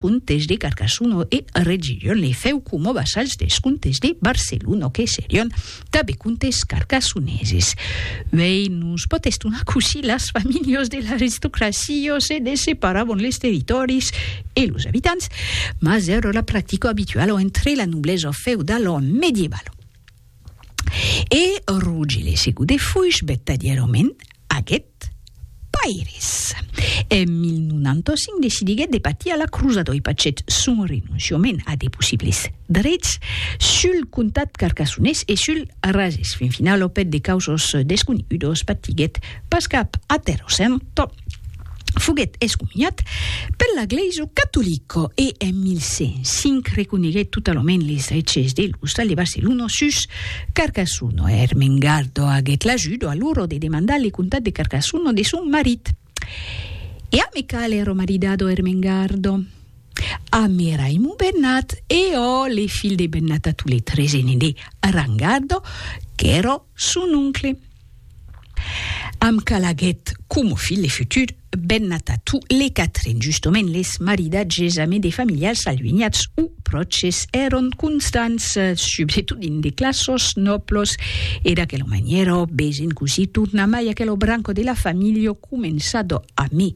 Contes de Carcasuno e Regillon e fèu coma vassalhs dels contes de Barceluno que serion tanben contes carcasuneses. Uèi nos pòt estonar cossí las familhas de l'aristocracia se desseparabon les territòris e los abitants, mas èra la practica abituala entre la noblesa feudala mediebala. E rogi le sigu de fuish bettadièrament aguet Pairis. En 1095 decidiguet de patir a la crusa doi pachèt son renonciament a de possibles drets sul comtat carcassonés e sul Razès. Fin finau lo pèt de causos desconegudos patiguet pas cap atèrosènto. foguèt excomuniat per la glèisa catolica e en 1105 reconeguèt totalament les dreches de l'Ostal de Barcelona sus Carcassona. Ermengarda aguèt l'ajuda alora de demandar le comtat de Carcassona de son marit. E a Mecal èra maridado Ermengarda a Meraimo Bernat e ò le fil de Bernat a Toletre, gene de Rangarda, qu'èra son oncle. Amb calaguet coma filh de futur, ben atatu le quatren, justement les maridatges ame de familiars aluenhats o pròches èron constants, subretot dins de classos nòblos, e d'aquela manièra, besen cosí tornamai aquel branco de la familha començado ame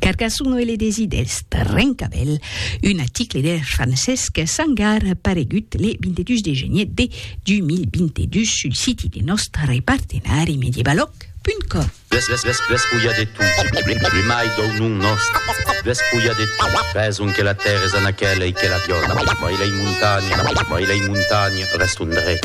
Carcassonne e le desi d'Èst, Rencabèl, un aticle de Francesc Sangar paregut le 22 de genier de 2022 sul siti de nòst repartenari medievaloc.com. Despulha de tu, primai dau nom nòst, despulha de tu, raison que la tèrra es a naquèla e que la viòla, mai lei montanha, mai lei montanha, rèston drech.